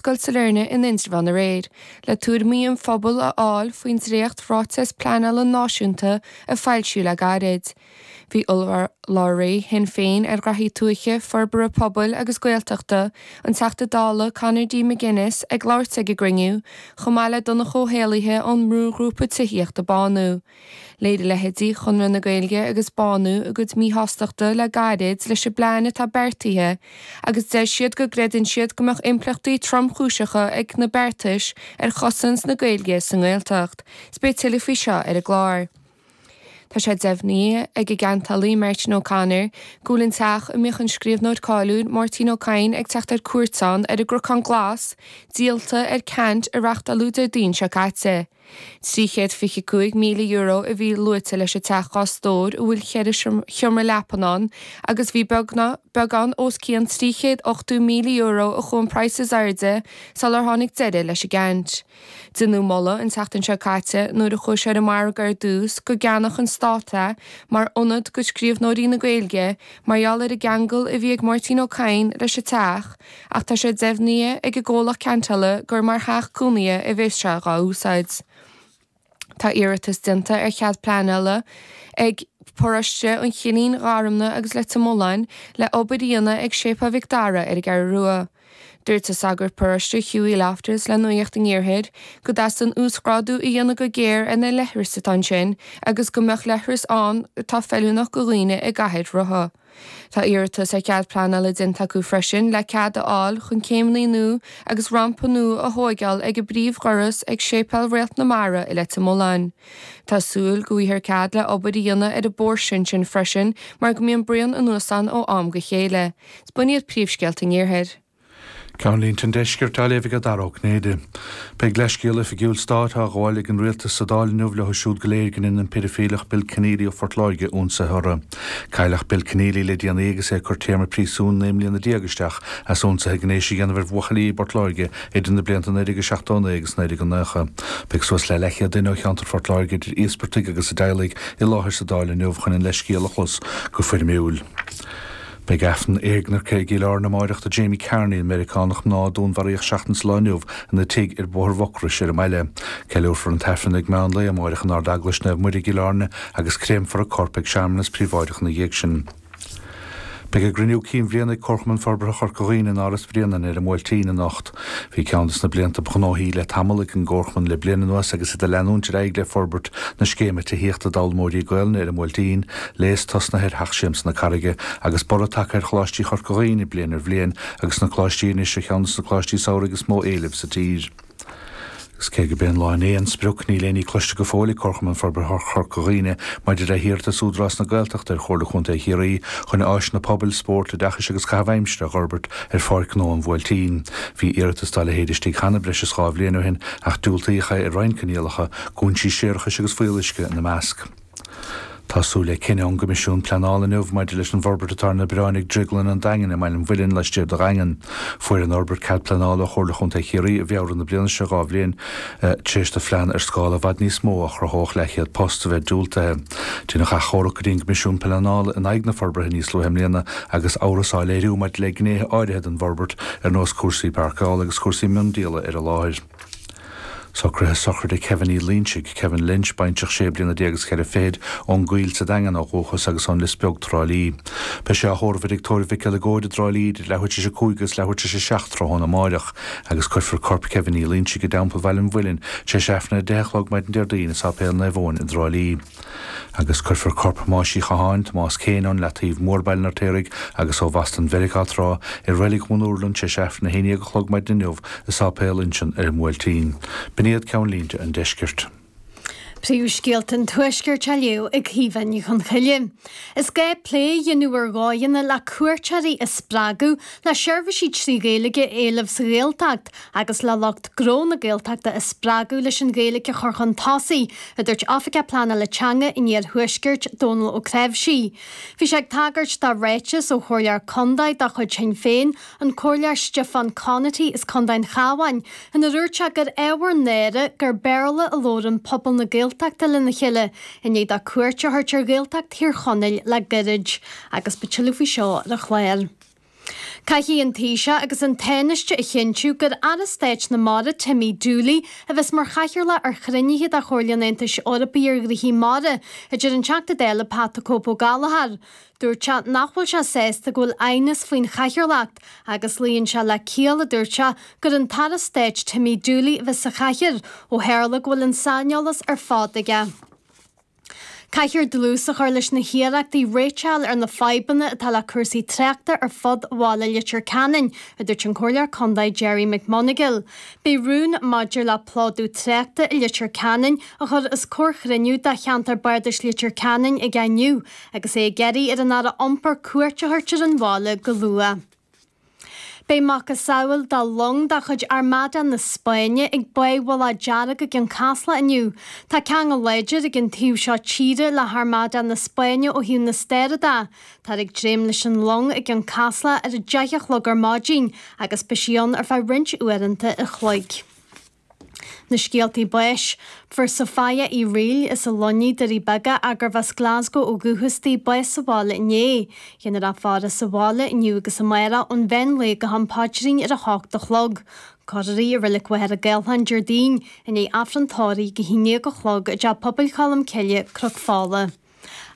Scoil Sailearna in Indreabhán aréir le tuairimí an phobail a fháil faoin dréacht ráiteas pleanála náisiúnta a foilsíodh le gairid. Bhí urlabhraí Shinn Féin ar Ghnaithí Tuaithe, Forbartha Pobail agus Gaeltachta, an Teachta Dála Conor D McGuinness ag labhairt ag an gcruinniú, chomh maith le Donncha Ó hÉallaithe ón mbrúghrúpa tithíochta Bánú. Léirigh leithéidí Chonradh na Gaeilge agus Bánú a gcuid míshástachta le gairid leis an bplean atá beartaithe agus deir siad go gcreideann siad go mbeadh impleachtaí tromchúiseacha ag na beartais ar chosaint na Gaeilge sa nGaeltacht. Spé tuilleadh faoi seo ar an gclár. Tá sé deimhnithe ag an gceantálaí Martin O'Connor go bhfuil an teach a mbíodh an scríobhnóir cáiliúil Máirtín Ó Cadhain ag teacht ar cuairt ann ar an gCnocán Glas díolta ar ceant a reáchtáladh Déardaoin seo caite. €325,000 a bhí luaite leis an teach dhá stóir a bhfuil ceithre sheomra leapan ann agus ba beagán os cionn €380,000 a chuaigh an praghas in airde sular tháinig deireadh leis an gceant. Déanadh moladh an tseachtain seo caite nuair a chuaigh sé ar an margadh ar dtús go gceannódh an stát é mar ionad do scríobhnóirí na Gaeilge mar gheall ar an gceangal a bhí ag Máirtín Ó Cadhain leis an teach ach tá sé deimhnithe ag an gcomhlacht ceantála gur mar theach cónaithe a bheas sé dhá úsáid. Tá iarratas déanta ar chead pleanála ag paróiste an Chillín, Gharumna agus Leitir Móir le obair a dhéanamh ag Séipéal Mhic Dara ar an gCeathrú Rua. Dúirt an sagart paróiste Hughie Loftus le Nuacht an Iarthair go dteastaíonn uasghrádú a dhéanamh go géar ar na leithris atá ansin agus go mbeadh leithreas ann atá feiliúnach do dhaoine i gcathaoir rotha. Tá iarratas ar chead pleanála déanta acu freisin le cead a fháil chun céimeanna nua agus rampa nua a thóigeáil ag an bpríomhdhoras ag Séipéal Réalt na Mara i Leitir Mealláin. Tá súil go bhfaighthear cead le obair a dhéanamh ar an bpóirse ansin freisin mar go mbíonn braon anuas ann ó am go chéile. Is b'in iad príomhscéalta an iarthair. Ceannlínte an Deiscirt á léamh ag Dara Ó Cinnéide. Beidh leithscéal oifigiúil stáit á ghabháil ag an rialtas sa Dáil inniu leo siúd go léir gur dhein an peidifíleach Bill Kenneally ó Phort Láirge ionsaithe orthu. Cailleadh Bill Kenneally le déanaí agus é ag cur téarma príosúin naoi mbliana déag isteach as ionsaithe gnéis a dhéanamh ar bhuachaillí i bPort Láirge idir na blianta 1979 agus 1990. Beidh suas le leathchéad duine ó cheantar Phort Láirge idir íospartaigh agus a dteaghlaigh i láthair sa Dáil inniu chun an leithscéal a chlos go foirmiúil. Beidh aifreann éagnairce i gCill Airne amáireach do Jamie Carney, an Meiriceánach mná a dúnmharaíodh seachtain sa lá inniu ina tigh ar Bhóthar Mhucrois ar an mbaile. Ceiliúrfar an t-aifreann ag meán lae amáireach in Ardeaglais Naomh Muire i gCill Airne agus créamfar a corp ag searmanas príobháideach ina dhiaidh sin. Beidh a gcruinniú cinn bhliana ag Comharchumann Forbartha Chorca Dhuibhne in Áras Bhréanainn ar an mBuailtín anocht. Bhí ceann de na blianta ba ghnóthaí le tamall ag an gComharchumann le bliain anuas agus iad ag leanúint ar aghaidh le forbairt na scéime tithíochta d'fhoghlaimeoirí Gaolainne ar an mBuailtín, léas tosnaithe ar Theach Siamsa na Carraige agus borradh tagtha ar Choláistí Chorca Dhuibhne bliain ar bhliain agus na Coláistí anois ar cheann de na Coláistí Samhraidh is mó éilimh sa tír. Agus cé gurb é an lá inné an sprioc, níl aon ní cloiste go fóill ag Comharchumann Forbartha Chorca Dhuibhne maidir le hiarratas Údarás na Gaeltachta ar Chomhairle Contae Chiarraí chun áiseanna pobail, spóirt, oideachais agus caitheamh aimsire a fhorbairt ar Pháirc Ghnó an Bhuailtín. Bhí iarratas dá leithéid istigh cheana breis is dhá bhliain ó shin ach diúltaíodh é ar roinnt coinníollacha, cúinsí séarachais agus fuíolluisce ina measc. Tá súil le cinneadh ón gCoimisiún Pleanála inniu maidir leis an bhforbairt atá ar na bioráin ag Drioglann an Daingin i mBaile an Mhuilinn laistiar de Dhaingean. Fuair an fhorbairt cead pleanála ó Chomhairle Contae Chiarraí i bhFeabhra na bliana seo, dhá bhliain tar éis do phlean ar scála i bhfad níos mó, a chruthódh leathchéad post, a bheith diúltaithe. Deineadh achomharc go dtí an gCoimisiún Pleanála in aghaidh na forbartha níos luaithe i mbliana agus amhras á léiriú maidir le gnéithe áirithe den bhforbairt ar nós cúrsaí páirceála agus cúrsaí miondíola ar an láthair. Socruithe sochraide Kevin Uí Loinsigh, Kevin Lynch, baintreach sé bliana déag is ceithre fichid, ón gCoill sa Daingean ó dhúchas agus ón Lios Beag, Trá Lí. Beidh sé á thórramh i dtigh tórraimh Mhic Giolla Chóda i dTrá Lí idir leathuair tar éis a cúig agus leathuair tar éis a seacht tráthnóna amáireach agus cuirfear corp Kevin Uí Loinsigh i dTeampall Bhaile an Mhuilinn tar éis aifreann a deich a chlog maidin Déardaoin i Sáipéal Naomh Eoin i dTrá Lí. agus cuirfear corp Thomáis Uí Chatháin, Tomás Kane, ón Leataoibh Mór Baile an Fheirtéaraigh agus ó Bhoston Mheiriceá tráth i Reilig Dhún Úrlann tar éis aifreann a haon déag a chlog maidin inniu i Sáipéal Uinseann ar an mBuailtín. B'in iad ceannlínte an Deiscirt. Príomhscéalta an Tuaiscirt á léamh ag Caoimhe Ní Chonchoille. Is gá plé a dhéanamh ar dhóigheanna le cuairteoirí a spreagadh le seirbhísí trí Ghaeilge a éileamh sa Ghaeltacht, agus le lucht gnó na Gaeltachta a spreagadh leis an Ghaeilge a chur chun tosaigh, a dúirt Oifigeach Pleanála Teanga in Iarthuaiscirt, Dónall Ó Cnáimhsí. Bhí sé ag tagairt do ráiteas ó chomhairleoir contae de chuid Shinn Féin, an Comhairleoir Stiofán Conaty as contae an Chabháin, inar dhúirt sé gur ábhar náire gur Béarla a labhrann pobal na Gaeltachta lena chéile i ndiaidh dó cuairt a thabhairt ar Ghaeltacht Thír Chonaill le gairid. Agus beidh tuilleadh faoi seo ar an chlár. Caithfidh an taoiseach agus an Tánaiste a chinntiú gur Aire Stáit na Mara Timmy Dooley a bheas mar chathaoirleach ar chruinnithe de Chomhairle an Aontais Eorpaigh ar ghnóthaí Mara a dúirt an Teachta Dála Pat the Cope Ó Gallchóir. Dúirt sé nach bhfuil sé sásta go bhfuil aighneas faoin chathaoirleacht agus luíonn sé le ciall a dúirt sé gur an tAire Stáit Timmy Dooley a bheas sa chathaoir ó tharla go bhfuil an saineolas ar fad aige. Caithfear dlús a chur leis na hiarrachtaí réiteach a fháil ar na fadhbanna atá le cúrsaí tráchta ar fud bhaile Leitir Ceanainn, a dúirt an Comhairleoir Contae Gerry McMonagle. Beidh rún maidir le plódú tráchta i Leitir Ceanainn á chur os comhair chruinniú de Cheantar Bardais Leitir Ceanainn aige inniu agus é ag iarraidh ar an Aire Iompair cuairt a thabhairt ar an bhaile go luath. Beidh macasamhail do long de chuid Armada na Spáinne ag Cé Bhoilg Dearg i gCionn Caslach inniu. Tá ceangal láidir ag an taobh seo tíre le hArmada na Spáinne ó thaobh na staire de. Táthar ag dréim leis an long i gCionn Caslach ar a deich a chlog ar maidin agus beidh sí ann ar feadh roinnt uaireanta an chloig. Na scéaltaí báis. Fuair Sophia Uí Fhríl as an Luinnigh Doirí Beaga agus arbh as Glaschú ó dhúchas di bás sa bhaile inné. Déanfar í a fhaire sa bhaile inniu agus amárach ón mheán lae go ham paidrín ar a hocht a chlog. Cuirfear í i Reilig Mhachaire Gathlán Déardaoin i ndiaidh Aifreann tórraimh a haon déag a chlog i dTeach Pobail Cholm Cille, Cnoc Fola.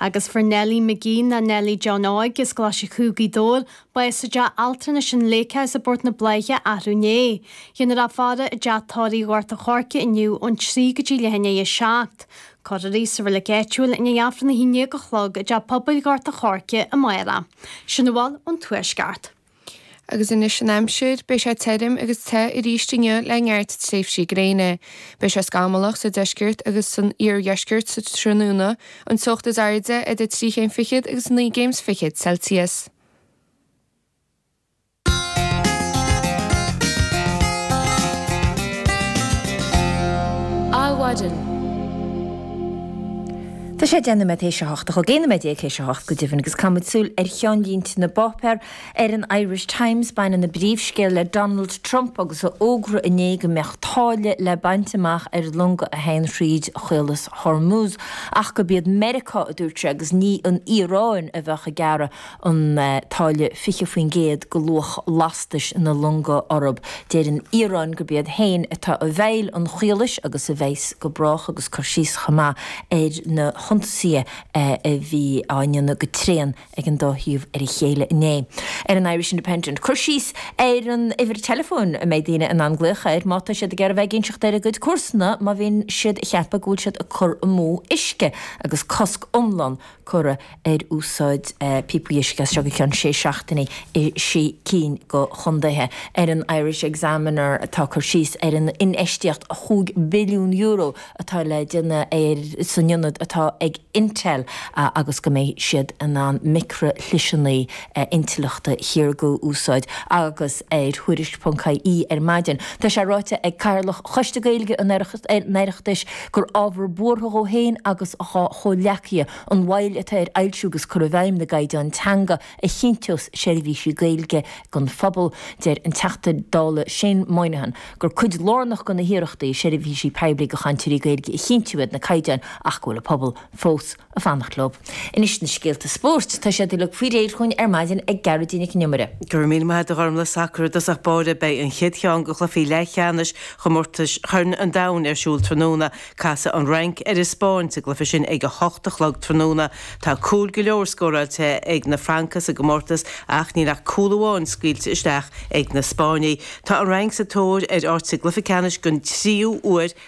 Agus fuair Nellie McGee nó Nellie John Óig as Glaise Chú, Gaoth Dobhair, bás i dTeach Altranais an Lakehouse i bPort na Bláiche arú inné. Déanfar í a fhaire i dTeach Tórraimh Ghort an Choirce inniu ón trí go dtí leath i ndiaidh a seacht. Cuirfear í sa reilig áitiúil i ndiaidh Aifreann a haon déag a chlog i dTeach Pobail Ghort an Choirce amárach. Sin a bhfuil ón Tuaisceart. Agus anois an aimsir, beidh sé tirim agus te arís inniu le neart tréimhsí gréine. Beidh sé scamallach sa deisceart agus san iardheisceart sa tráthnóna, an teocht is airde idir trí chéim fichead agus naoi gcéim fichead Celsius. Adhmhaidin. Tá sé dhá nóiméad déag théis a hocht, 12 nóiméad théis a hocht go deimhin, agus caithfidh muid súil ar cheannlínte na bpáipéar. Ar an Irish Times baineann an príomhscéal le Donald Trump agus a fhógra inné go mbeadh táille le baint amach ar longa a théann thríd Chaolas Hormuz ach gurb iad Meiriceá, a dúirt sé, agus ní an Iaráin a bheadh ag gearradh. an táille 20% go luach lastais na longa orthu. Deir an Iaráin gurb iad féin atá i bhfeighil an chaolais agus a bheas go brách agus cur síos chomh maith ar na hionsaithe a bhí á ndéanamh go tréan ag an dá thaobh ar a chéile inné. Ar an Irish Independent cur síos ar an uimhir teileafóin a mbeidh daoine in ann glaoch air má tá siad ag iarraidh bheith ag inseacht ar a gcuid comharsana má bhíonn siad a cheapadh go bhfuil siad ag cur amú uisce agus cosc iomlán curtha ar úsáid píopaí uisce as seo go ceann sé seachtainí i sé cinn go chontaetha. Ar an Irish Examiner tá cur síos ar an infheistíocht €5 billiún atá le déanamh san ionad atá ag Intel agus go mbeidh siad in ann micrishliseanna intleachta saorga a úsáid agus ar Thuairisc.ie ar maidin tá sé ráite ag Cathaoirleach Choiste Gaeilge an Oireachtais gur ábhar buartha dhó féin agus dhá chomhghleacaithe an mhoill atá ar fhoilsiú agus cur i bhfeidhm na gcaighdeán teanga a chinnteos seirbhísí Gaeilge don phobal. Deir an Teachta Dála Shane Moynihan gur cuid lárnach de na hiarrachtaí seirbhísí poiblí go chainteoirí Gaeilge a chinntiú iad na caighdeáin ach go bhfuil an pobal fós a fanacht leo. Anois na scéalta spóirt. Tá siad uilig faoi réir chugainn ar maidin ag Gearoidín Nic an Iomaire. Go raibh míle maith ad a Ghormlaith Sacar i dtosach báire. Beidh an chéad cheann de chluichí leathcheannais chomórtais Chorn an Domhain ar siúl tráthnóna. Casfaidh an Fhrainc ar an Spáinn sa gcluiche sin ag a hocht a chlog tráthnóna. Tá cúil go leor scóráilte ag na Francaigh sa gcomórtas ach níl ach cúl amháin scaoilte isteach ag na Spáinnigh. Tá an Fhrainc sa tóir ar áit sa gcluiche ceannais den tríú huair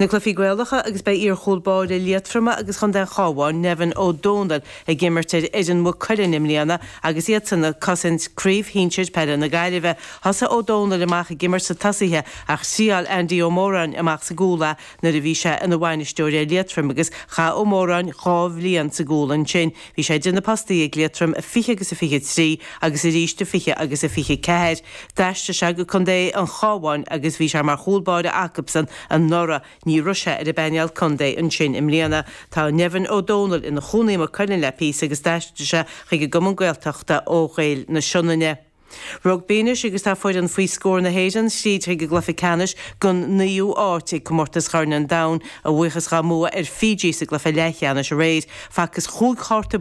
na cluichí Gaelacha agus beidh iarchúl báire Liatroma agus chontae an Chabháin, Nevin Ó Dónaill, ag imirt ar fhoireann Mhaigh Cuilinn i mbliana agus iadsan ag cosaint Craobh Shinsir Peile na Gaillimhe. Thosaigh Ó Dónaill amach ag imirt sna tosaithe ach thriáil Andy Ó Móráin amach sa gcúl é nuair a bhí sé ina bhainisteoir ar Liatroim agus chaith Ó Móráin dhá bhliain sa gcúl ansin Bhí sé idir na postaí ag Liatroim i 20 agus 23 agus arís i 20 agus 24. D'aistrigh sé go contae an Chabháin agus bhí sé mar chúl báire acusan anuraidh. Ní raibh sé ar an bpainéal contae ansin i mbliana. Tá Nevin Ó Dónaill ina chónaí i Maigh Cuilinn le píosa agus d'aistrigh sé chuig an gcumann Gaeltachta ó Ghaeil na Sionainne. Rugbaí anois agus tá foireann faoi scór na hÉireann thríd chuig an gcluiche ceannais den naoú háit ag Comórtas Chorn an Domhain a bhuíochas dhá mbua ar Fiji sa gcluiche leathcheannais aréir, facthas chúig chárta